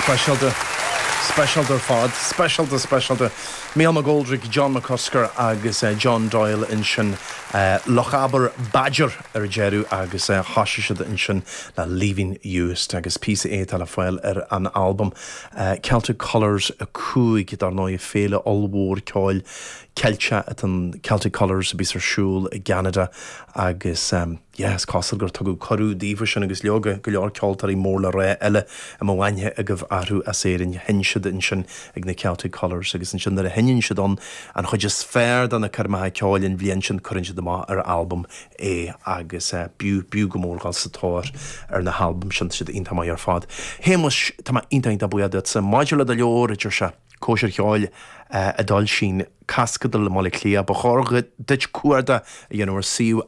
Speisialta, speisialta ar fad. Speisialta, speisialta. Mícheál McGoldrick, John McCusker agus John Doyle ansin, Lochaber Badger ar deireadh agus thosaigh siad ansin le Leaving Uist agus píosa é atá le fáil ar an albam Celtic Colours 5, dar ndóigh, féile ollmhór ceoil Ceilteach atá in Celtic Colours a bíos ar siúl i gCeanada agus. Yeah, is cosúil gur tugadh cuireadh daofa sin agus leoga, go leor ceoltóirí mór le rá eile a mbeadh aithne agaibh orthu as Éirinn. Sheinn siad ansin ag na Celtic Colours agus ansin nuair a sheinneann siad ann an chuid is fearr de na coirmeacha ceoil an bhliain sin cuireann siad amach ar albam é agus b'fhiú, b'fhiú go mór dul sa tóir ar na halbaim sin tá siad iontach maith ar fad. A Shéamais, tá mé iontach iontach buíoch duitse. Maidir le do leabhar, a deir sé, Cóisir cheoil a d'fhoilsigh An Claisceadal i mBaile Átha Cliath. Ba chóir duit cuardach a dhéanamh ar shuíomh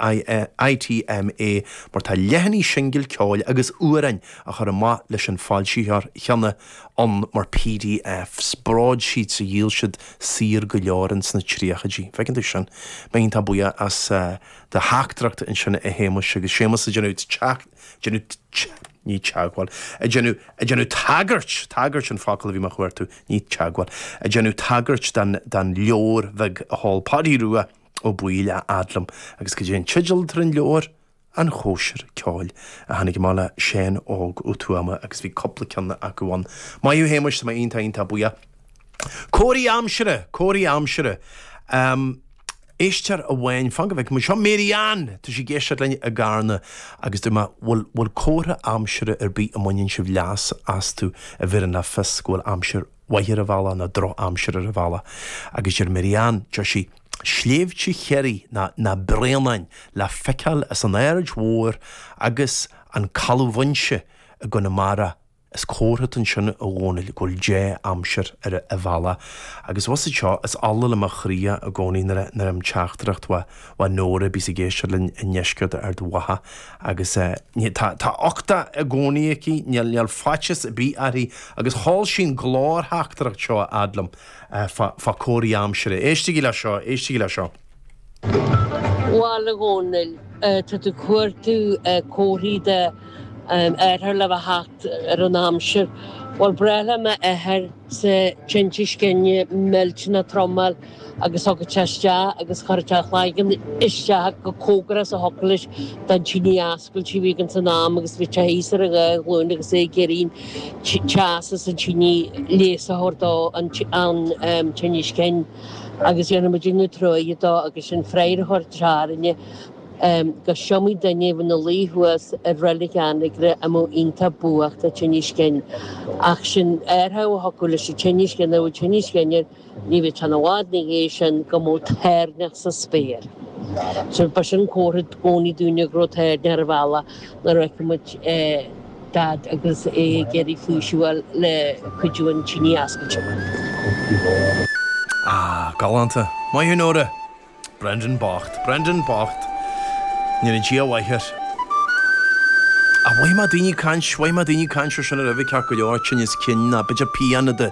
ITMA mar tá leathanaigh singil ceoil agus amhráin a chur amach leis an foilsitheoir chéanna ann mar PDFs. Bród siad sa dhíol siad saor go leor ins na tríochaidí. Feiceann tú sin. Tá mé iontach buíoch as do theachtaireacht ansin a Shéamais agus Séamas ag déanamh teacht, déanamh teacht, ní teagmháil, ag déanamh, ag déanamh tagairt, tagairt an focal a bhí mé a chuartú, ní teagmháil, ag déanamh tagairt don, don leabhar bheag a sheol Páidí Rua Ó Baoill a fhad liom agus cad é an teideal atá ar an leabhar, An Chóisir Ceoil a tháinig amach le Seán Óg Ó Tuama agus bhí cúpla ceann acu ann. Maith thú a Shéamais, tá mé iontach, iontach buíoch. Comharthaí aimsire, comharthaí aimsire. Ehm, éisteoir amháin, fan go bhfeice muid. Seo Mary Ann, tá sí ag éisteacht linn i gCarna agus dúirt mé, bhfuil, bhfuil comhartha aimsire ar bith a mbaineann sibh leas astu a bheireann le fios go bhfuil aimsir mhaith ar an bhealach nó droch-aimsir ar an bhealach? Agus deir Mary Ann, deir sí, sléibhte Chiarraí nó na Bréanainn le feiceáil as an Aird Mhóir agus an Caladh Mhaínse i gConamara Is comhartha atá ansin, a Dhónaill, go bhfuil dea-aimsir ar an bhealach. Agus bhus id seo, is ola le mo chroí é i gcónaí nuair a nuair a fhaighim teachtaireacht ó ó Nóra a bíos ag éisteacht linn i ndeisceart Ard Mhacha agus ní tá tá uchtach i gcónaí aici níl níl faitchis ar bith uirthi agus sheol sí an glórtheachtaireacht seo a fhad liom fá fá comharthaí aimsire. Éistigí le seo, éistigí le seo. Bhuel a Dhónaill, Tá tú ag cuartú comharthaí de athrú le bheith ag teacht ar an aimsir. Bhuel, ba ghnách le m'athairse tinneas cinn millteanach trom a fháil agus thigeadh sé isteach agus chuireadh sé a chloigeann isteach chomh cóngarach is a thiocfadh leis don tine oscailte a bhí againn san am agus bhíodh sé thíos ar an dhá ghlúin agus é ag iarraidh teas as an tine leigheas a thabhairt dó don tinneas cinn. agus dhéanaimid ina dtreoir dó agus an fréamhaitheoir trarainne go 's iomaí duine ina luí thuas ar reilig Anagaire a mbeadh iontach buartha le tinneas cinn. Ach sin aertha a thógfadh leis an tinneas cinn a bhfuil tinneas cinn air, ní bheadh ceann i bhfad ina dhiaidh sin go mbeadh toirneach sa spéir. Ba sin comhartha i gcónaí dúinne go raibh toirneach ar an bhealach nuair a fheicfimid é. Daid agus é ag iarraidh físiúáil le cuidiú an tine ascailte. Ah, galánta. Maith thú, Nóra. Brendan bocht. Brendan bocht. Ndéana Dia a mhaith air. Ach mhaith má daoine caint, mhaith má daoine caint, seo sin ar oifig ceart go leor, tinneas cinn, ná bit of piano de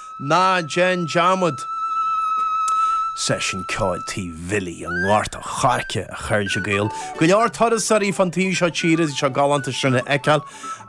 Ná déan dearmad! Seisiún Ceoil Tí Bhilly i nGort an Choirce, a chairde Gael. Go leor turasóirí fán taobh seo tíre, tá sé galánta sin a fheiceáil.